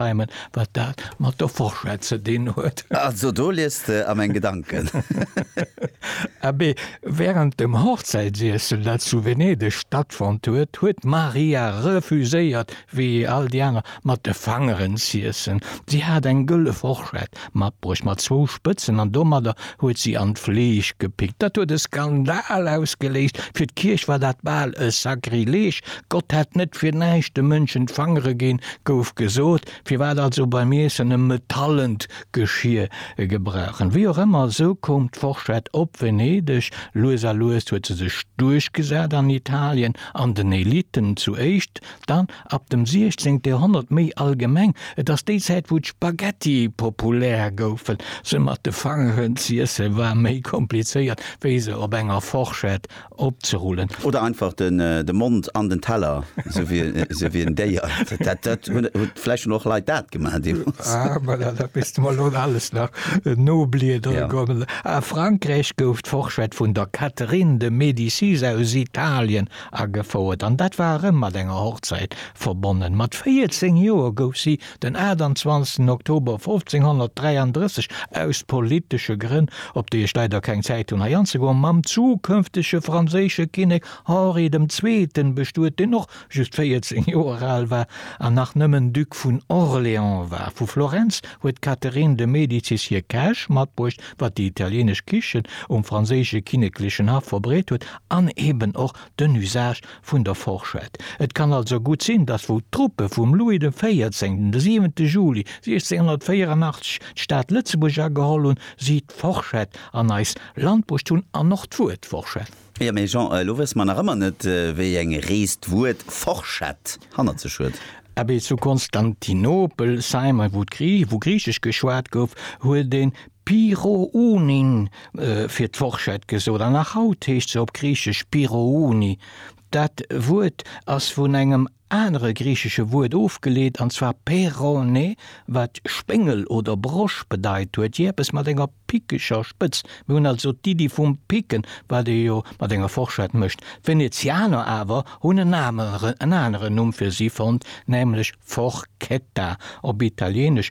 Heimen, wat dat mat der Fourchette ze dinn huet. Also do liest de a meng Gedanken. Abee, wärend dem Hochzäitsiessel, dat zu Venedeg stattfonnt huet, huet d'Maria refuséiert, wéi all déi aner, mat de Fangeren z'iessen. Si hat eng gëlle Fourchette, Mat bruecht mat zwou Spëtzen an domadder huet si an d'Fleesch gepickt. Dat huet e Skandal ausgeléist. Fir d'Kierch war dat bal e Sakrileg. Gott hätt net fir näischt de Mënschen d'Fangere ginn, gouf gesot. Firwat also beim Iessen e metallent Geschier gebrauchen? Wéi och ëmmer, esou koum d'Forschett op Venedeg. Lues a lues huet se sech duerchgesat an Italien an den Elitten zu éischt, dann Ab dem 16 Joerhonnert méi allgemeng, et ass déi Zäit wou d'Spaghetti populär goufen. Se mat de Fangeren z'iessen war méi komplizéiert wéi se op enger Forschett opzerullen. Oder einfach de Mond an den Teller, sou wéi en Déier. Dat hunn vläicht schon och Leit dat gemaach deemols. Ah voilà, dat misst de mer elo alles nach nobliedere kommen. A Frankräich gouf d'Forschett vun der Catherine de Médicis aus Italien Agefouert, an dat war erëm mat enger Hochzäit verbonnen. Mat 14 Joer gouf si den 28 Oktober 1533, aus politesche Grënn, op déi ech leider keng Zäit hunn hei anzegoen, mam zukënftege franséische Kinnek Henri dem Zweeten bestuet, deen och just 14 Joer al war an nach nëmmen Duc vun Orléans war. Vu Florenz huet d'Catherine de Medicis hir Käch matbruecht, wat déi italienesch Kichen um franséische kinneklechen Haff verbreet huet, An eben och den Usage vun der Forschett. Et kann also gutt sinn, datt wou d'Truppe vum Louis de Véierzéngten de 7 Juli 1684 d'Stad Lëtzebuerg ageholl hunn, si d'Forschett an eis Land bruecht hunn an och d'Wuert Forschett. Jo, mee Jean, elo wësse mer nach ëmmer net, wéi eng Rees d'Wuert Forschett hannert sech huet. Abee, zu Konstantinopel, Simon, wou Griichesch geschwat gouf, huet ee Pirounin fir d'Forschett gesot an nach haut heescht se op Griichesch pirouni. Dat Wuert ass vun engem anere griichesche Wuert ofgeleet, an zwar peironé, wat Spéngel oder Brosch bedeit huet, jee eppes mat enger pickeger Spëtz. Mir hunn also d'Iddi vum Picken, wat ee jo mat enger Forschett mécht. D'Venezianer awer hunn en aneren Numm fir si fonnt, nämlech Forchetta, op Italieenesch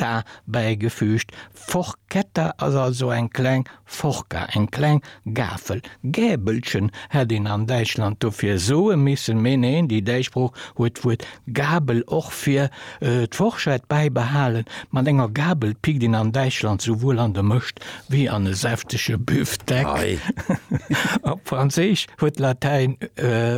D'ta bäigefüügt. Forchetta ass also eng kleng Forca, eng kleng Gafel. Gäbelchen hätt een an Däitschland dofir soe missen, mee neen, déi däitsch Sprooch huet d'Wuert Gabel och fir d'Forschett bäibehalen. Mat enger Gabel pickt een an Däitschland souwuel an de Mëscht wéi an e säftege Büfteck. Op Franséisch huet d'Latäin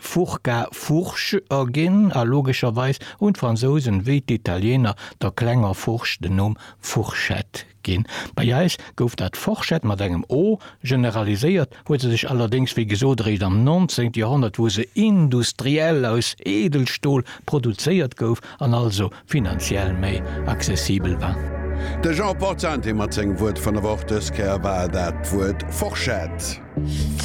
furca Fourche erginn a logescherweis hunn d'Fransousen, wéi d'Italieener, der klenger Fourche den Numm Fourchette ginn. Bei eis gouf dat Forschett mat engem o generaliséiert, huet se sech allerdéngs, wéi gesot, eréischt am 19. Joerhonnert, wou se industriell aus Eedelstol produzéiert gouf an also finanziell méi accessibel war. De Jean Portante mat sengem Wuert vun der Woch, dës Kéier war dat d'Wuert Forschett.